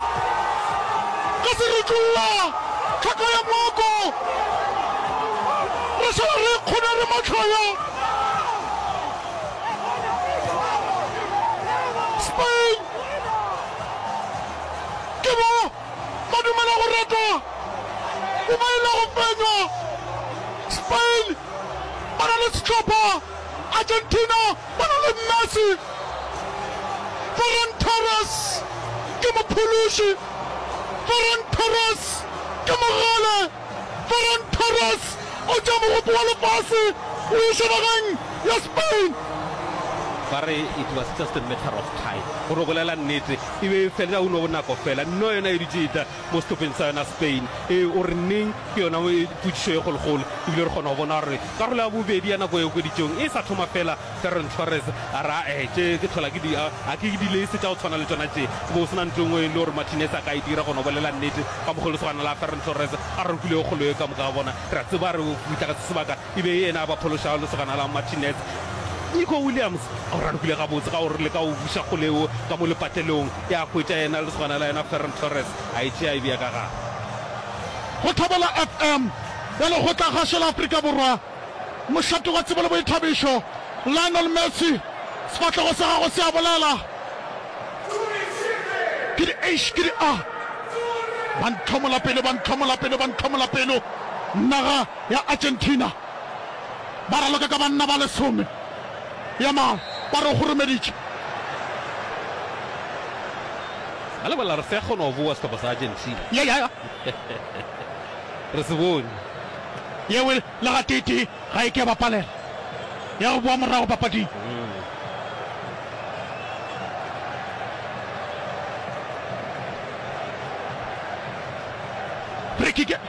Re se re tšolla thaka ya mooko, Re šala re ikgona re mahlaya. Spain, Ke ba ba dumela go ratwa mo ba e lego fenywa. Spain ba na le sehlopha. Argentina ba na le Messi, Ferran Torres ke mophološi, Ferran Torres ke mogale, Ferran Torres o tšea mogopo wa lefase o iša nageng ya Spain. Ba re it was just a matter of time, gore o bolela nnete, e be e fela, ka uno bonako fela, nno yona e dutše e tla, mo sehlopheng sa yona Spain. Ee, o re neng ke yona potšišo e kgolokgolo, ebile re kgona go bona gore karolo ya bobedi ya nako e okeditšwego e sa thoma feela. Ferran Torres a re, A-e, tše ke tlhola ke di, a, a ke dilese tša go tshwana le tšona tše. Go be go se na ntho e nngwe e le gore Martinez a ka e dira, gona o bolela nnete. Ka mokgwa wo lesogana la Ferran Torres a rokilego kgolo ye, ka moka ga bona re a tseba re o fihla ga se sebaka. e be e yena a ba phološago lesogana la Martinez. Nico Williams a o rarokile gabotse ka go re leka go buša kgole yeo ka mo lepatelong, e a hwetša yena lesogana la yena Ferran Torres a e tšea a e bea ka gare. Go Thobela FM ya Lekgotlakgašo la Afrika Borwa, mošate wa tsebo le boithabišo, Lionel Messi, sefahlego sa gagwe se a bolela, ke di eish, ke di ah, ba ntlhomola pelo, ba ntlhomola pelo, ba ntlhomola pelo, nna ga. ya Argentina ba raloka ka banna ba lesome. Yamal ba re o kgoromeditše. A lebala re sa kgona go boa sehlopha sa Argentina. Ya ya ya. Re se bone. Yeo e le gateetee ga e ke ya ba palela ya go boa morago papading. Free kick.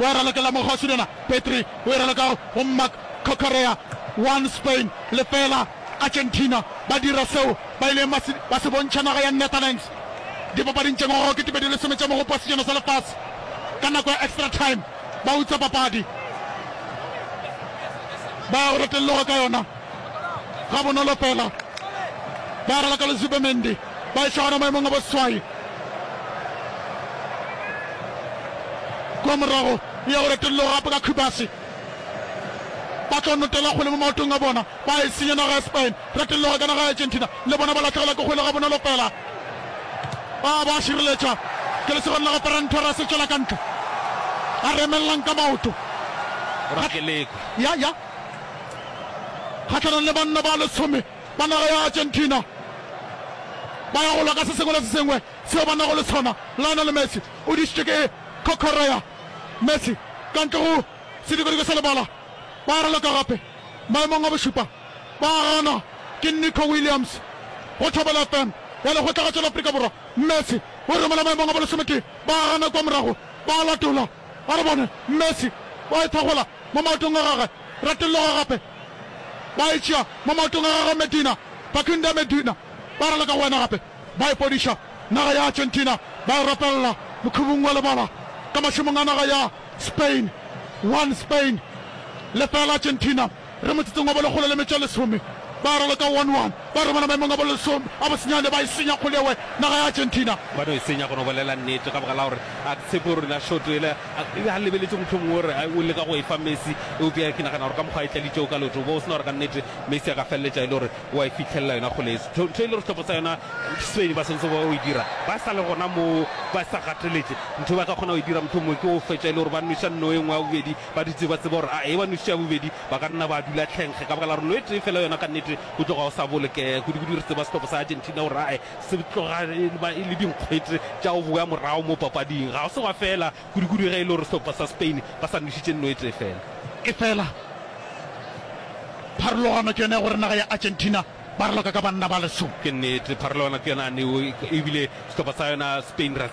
o e ralokela mo go Sirena, Petry o e raloka go Marc Corcorea, 1 Spain, 0 Argentina, ba dira seo ba ileng ba se, ba se bontšha naga ya Netherlands dipapading tše ngwaga wa 2010 tša Mogopo wa Sejana sa Lefase ka nako ya extra time, ba utswa papadi ba ya go retelloga ka yona gabonolo fela, ba raloka le Zubemendi. ba e gona maemong a boswai kwa morago ya go retolelo gape ka khubasi ba tlo notela kgole mo maotong a bona ba e senya naga ya spain retologa ka naga ya argentina le bona ba latlhegela ke kgole ga bonolo fela ba ba šireletša ke lesegong la go ferran torres tswela ka ntle a remelelang ka maoto ya ya kgatlhanong le banna ba lesome ba naga ya Argentina ba ya go lwa ka se sengwe le se sengwe seo ba nago le sona. Lionel Messi o dišitšwe ke Correa. Messi ka ntle go sedikadika sa lebala, ba raloka gape maemong a bošupa, ba ganwa ke Nico Williams. Go Thobela FM ya Lekgotlagatšo la Afrika Borwa, Messi o romela maemong a bolesometee, ba gana kua morago, ba latola. A re bone, Messi o a e thakgola mo maotong a gagwe, retologa gape. ba e tšea mo maotong a gagwe Medina, Bakunda Medina, ba raloka go wena gape, ba ipodiša naga ya Argentina, ba e rapelela mokhubung wa lebala ka mašemong a naga ya Spain, one Spain, lefela Argentina, re motsotsong wa bolekgolo le metšo e lesome, ba raloka one one, ba romela maemong a bolesome a bosenyane, ba e senya kgolewe naga ya Argentina. Ba no e senya, go no bolela nnete, ka baka la gore a ke tshepe gore rena short ele A e be a lebeletše mohlomongwe o re o leka go e fa Messi, eupša ke nagana gore ka mokgwa a e tladitšego ka leoto, o be o se na gore kannete Messi a ka feleletša e le gore o a e fihlelela yona kgole. Ntho e le gore sehlopha sa yona Spain ba swanetše go ba ba e dira ba sa le gona moo, ba sa gateletše, ntho e ba ka kgona go e dira mohlomongwe ke go fetša e le gore ba nweša nno e nngwe ya bobedi, ba dutše ba tseba gore a e ba nwešitše ya bobedi ba ka nna ba dula tlhenkge ka baka la gore nno e tee feela yona kannete o tloga o sa bolokega, kudukudu re tseba sehlopha sa Argentina gore a Se tloga e ba e le dinkgwete tša go bowa morago mo papading. Ga se gwa fela kudukudu ge e le gore sehlopha sa Spain ba sa nwešitše nno e tee fela. Efela pharologano ke yona ya gore naga ya Argentina ba raloka ka banna ba lesome. Ke nnete, pharologano ke yona ya neo ebile sehlopha sa yona Spain re a.